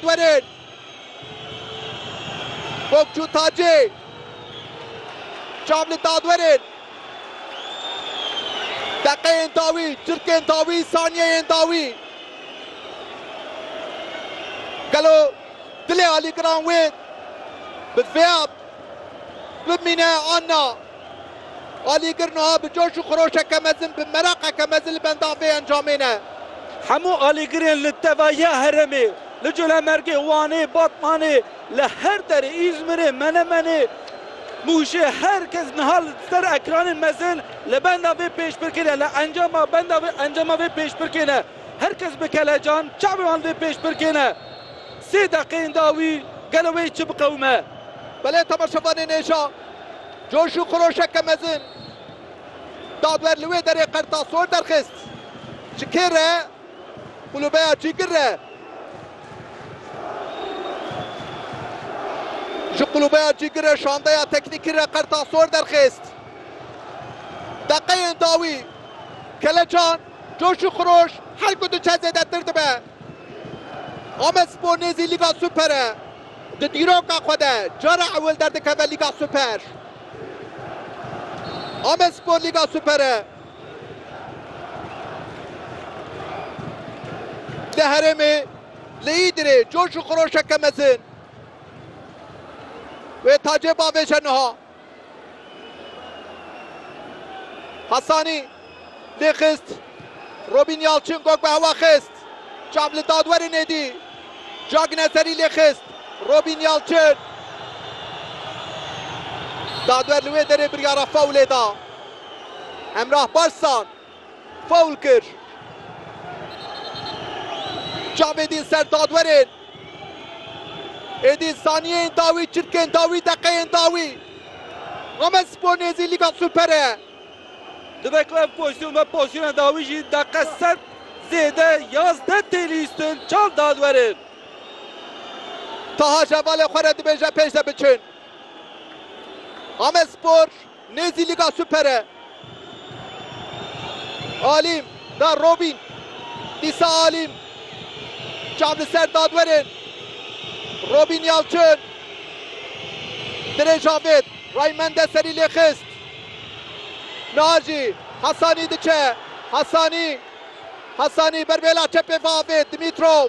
Werin! Bokçû Tacê çav li Dadwerin. Deqeyên dawî, çirkên dawî, saniyeyên dawî. Gelo dilê alîgiran wê bi vêya Bimîne Anna! Alîgir nuha bi coş û xiroşeke mezin, bi meraqeke mezin li benda vê encamê ne. Hemû alîgirên li tevahiya herêmê, li Colemêrgê, Wanê, Batmanê, li her derê, Îzmirê, Menemenê, Mûşê, her kes niha li ser ekranên mezin li benda vê pêşbirkê ne, li encama benda vê encama vê pêşbirkê ne. Her kes bi kelecan çavê wan li vê pêşbirkê ne. Sê deqeyên dawî gelo wê çi biqewime? Belê temaşevanên hêja coş û xiroşeke mezin dadwer li wê derê Qertasor derxist. Ji kê re? Qulûbeya Cîgir re. Ji qulûbeya Cîgir re şandeya teknîkî re Qertasor derxist. Deqeyên dawî Kelecan coş û xiroş her ku diçe zêdetir dibe. Amedspor nêzî Lîga Super e. Di dîroka xwe de cara ewil derdikeve Lîga Super. Amedspor Lîga Super e. Li herêmê li Îdirê coş û xiroşeke mezin wê tacê bavêje niha. Hasanî lê xist. Robîn Yalçin gog bi hewa xist. Çav li dadwerê nêdî. Cag Nezerî lê xist. Robîn Yalçin. Dadwer li wê derê biryara faulê da. Hemrah Barzsan. Faul kir. Cavedîn ser dadwerên. Êdî saniyeyên dawî, çirkên dawî, deqeyên dawî. Amedspor nêzî Lîga Super e. Dibe ku ev pozîsyon be pozîsyona dawî jî deqe sed zêde yazdeh tê lîstin çar dadwerên. Taha jevalê xwe re dibêje pêş de biçin. Amedspor. Nêzî Lîga Super e. Alîm da Robîn. Dîsa Alîm çav li ser dadwerên. Robîn Yalçin dirê Javêt Ray Mende serî lê xist. Niha jî Hasanî diçe. Hasanî Hasanî ber bêla çepê ve avêt Dimitrov.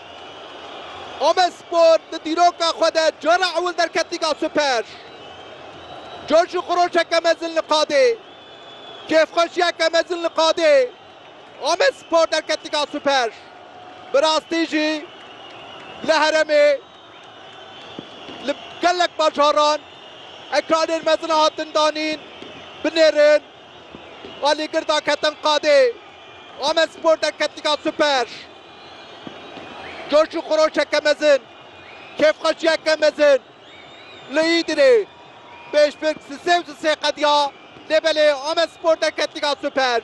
Amedspor di dîroka xwe de cara ewil derket Lîga Super. Coş û xiroşeke mezin li qadê, kêfxweşiyeke mezin li qadê Amedspor derket Lîga Super. Bi rastî jî li heremê li gelek bajaran ekranên mezin hatin danîn binêrin alîgir daketin qadê Amedspor derket Lîga Super. Coş û xiroşeke mezin, kêfxweşiyeke mezin li Îdirê. Pêşbirk sisê û sisê qediya lê belê Amedspor derketî ya Super.